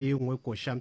e nngwe koša um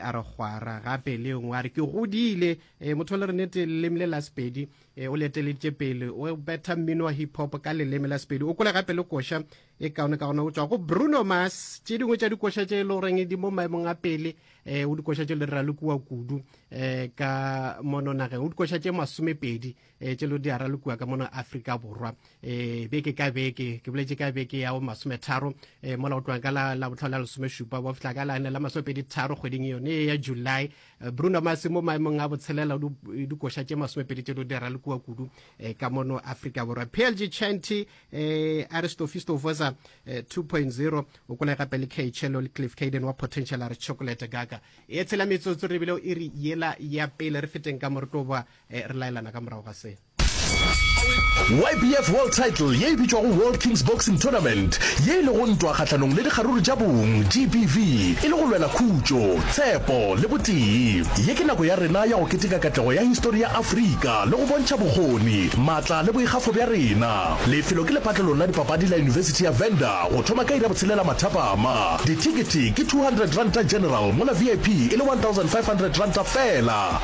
a re kgwara gape le nngwe a re ke godile um motho le re nete leleme le la sepedi um o le eteleditše pele o betha mmino wa hip hop ka leleme la sepedi o kole gape le koša e kaone ka gona o tswa go bruno mas tše dingwe tša dikoša tše e le goreng di mo maemong a pele um o dikoša tše le ralokiwa kudu um ka mono nageng o dikoša tše masomepedi e tše lo di ara lokua ka mona afrika borwa e beke ka beke ke boletse ka beke ya bo masometharo e mola o tloga ka la botlhole la lesomešupa wa fitlha ka lane la masomepedi tharo kgweding yone e ya july e, bruno mase mo maemong a botshelela e dikoša tše masomepedi tše lo di ara lokua kudu e, ka mono afrika borwa plg chanty e, aristofisto vosa 2.0 o kole gape le kchelo le cliff caden wa potential a re chocolate gaka e tshela metsotso re bile o e re yela ya pele re feteng ka mo re tlo boa E re laelana ka morago ga se. YBF World Title ye e bitšwago World Kings Boxing Tournament ye e lego ntwa kgahlanong le dikgaruru tša bong, GBV, e le go lwela khutšo, tshepo le botee. Ye ke nako ya rena ya go keteka katlego ya histori ya Afrika le go bontšha bokgoni, matla le boikgafo bja rena. Lefelo ke lepatlelong la dipapadi la Yunibesithi ya Venda go thoma ka iri ya botshelela mathapama. Dithekete ke R200 general mola VIP e le R1,500 fela.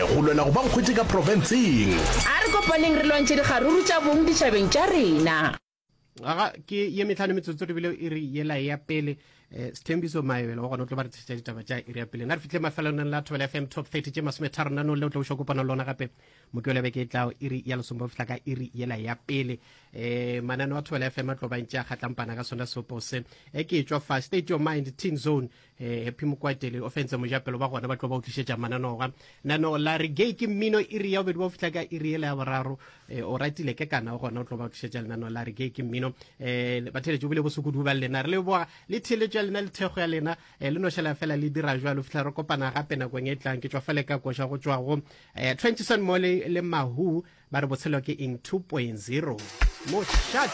Go lwela go ba nkgwete ka profenseng. A re kopaneng re lwantšhe dikgaruru tša bong ditšhabeng tša rena. Ngwaga ke ye metlhano metsotso re bile iri yela ya pele eh, sethembiso maebela wa gona o tlo ba re tshesetša ditaba tša iri ya pele na re fihle mafelelong la thobela fm top 30 tše masome tharo nanong le o tlo o šokopana lona gape mokewela beke e tlago iri ya lesomba o fihla ka iri yela ya pele um manano a thobela fm a tlobantše a kgatlampana ka sona seopo se e ke e tšwa fa state of mind teen zone eh, happy mokwatele o fentse mojapelo ba gona ba tlo ba utlišetša mananoga nano la re gay ke mmino e re ya bobedi ba o fitlha ka e re ele ya boraro eh, o ratile ke kana o gona o tlo ba utlišetša lenano la re gay ke mmino eh, ba theletše bile bosokudu ba lena re le boa le theletšo ya lena le thekgo ya lena eh, le nošela fela le dira jwa lo fitlha re kopana gape nakong e tlang ke tšwa fale ka koša go tšwa go eh, trentison mo le mahu ba re botshelo ke eng 2.0 moshat